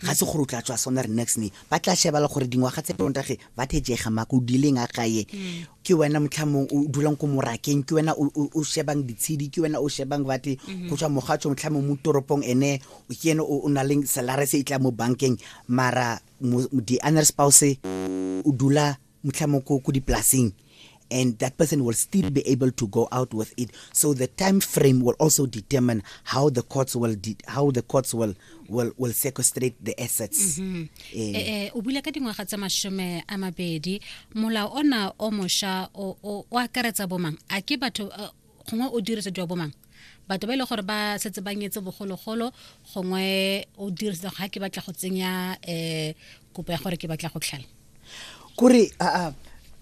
ga se gore o tla tswa sona re next ne ba tla sheba le gore dingwaga tse pontage ba thejega mako o dileng a gae ke wena motlhamong o dulang ko morakeng ke wena o- o o shebang ditshedi ke wena o shebang bate go tswa mogatso motlhamong mo toropong ene o- ke ene o o na leng salare se e tla mo bankeng mara mo- mo- di-honor spouse o dula mtlha mo ko dipolaseng and that person will still be able to go out with it so the time frame will also determine how the courts will how the courts will will, will sequestrate the assets mm -hmm. eh, eh, eh o bula ka dingwaga tsa mashome a mabedi molao ona o mosha o akaretsa bomang a ke batho uh, gongwe o dirisa jwa bomang batho ba e le gore ba setse ba nyetse bogologolo gongwe o dirisa ga ke batla go tsenya um kopo ya gore ke batla go tlhala kore uh,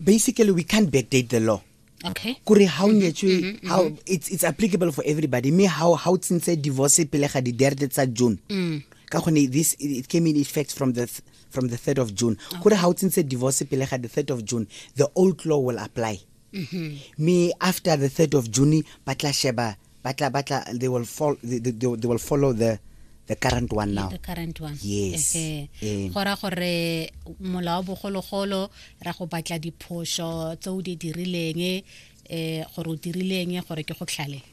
basically we can't backdate the law okay kore ha o mm-hmm, nyetswe mm-hmm, how mm-hmm. it's it's applicable for everybody me how how tsintse divorce pele ga di derde tsa June mm. ka gone this it came in effect from the from the 3rd of June kore ha o tsintse divorce pele ga the 3rd of June the old law will apply mm-hmm. me after the 3rd of june ba tla sheba ba tla ba tla they will follow they, they, they will follow the the current one now the current one yes eh. gora gore mola wa bogologolo ra go batla diphoso tse o di dirileng eh gore o dirileng gore ke go tlhale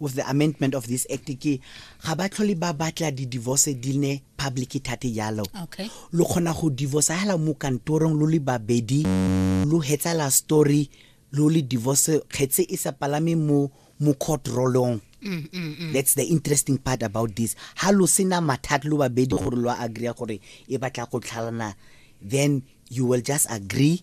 with the amendment of this act ke ga ba tlhole ba batla di-divorce di ne public thate jalo okay. lo kgona go divorce hela mo kantorong lo le babedi lo hetsala story lo le divorce kgetse e sa palame mo mo court rolong Mm, mm, mm. that's the interesting part about this ha lo sena mathata lo babedi gore lo agree gore e batla go tlhalana then you will just agree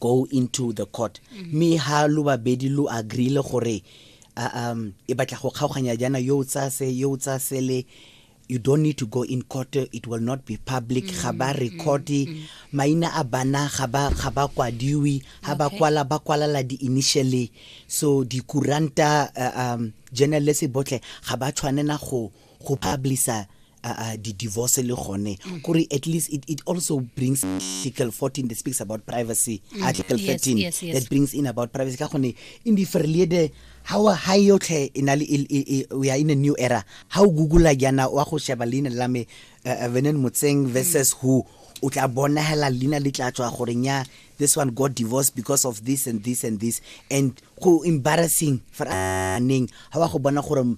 go into the court mme ha lo babedi lo agreele gore uh, um e batla go kgaoganya jana yo o tsaya se yo o tsaya sele you don't need to go in court it will not be public ga ba record maina a bana ga ba ga ba kwadiwi ha ba Okay. kwala ba kwalala di initially so dikuranta uh, um journalist botlhe ga ba tshwanela go go publisher uh, uh, the divorce le gone mm. kore at least it, it also brings article 14 that speaks about privacy mm. article 13 yes, yes, yes. that brings in about privacy ka gone in the verlede how a high yotlhe in a, we are in a new era how google yana wa go sheba leina la me uh, venen motseng versus mm. who o tla bonagela leina le tla tswa gore nya this one got divorced because of this and this and this and go embarrassing for neng ha wa go bona gore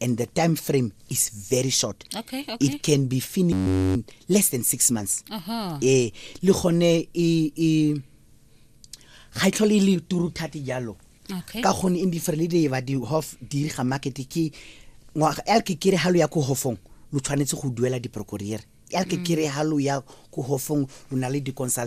and the time frame is very short okay, okay. it can be finished in less than six months uh -huh. eh le gone e e ga itlhole e le turu thati jalo okay. ka gone in different le ba di hof di ga market ke ngwa el ke kere halo ya ko hofong lo tshwanetse go duela di procureur el ke mm. kere halo ya ko hofong lo na le di consult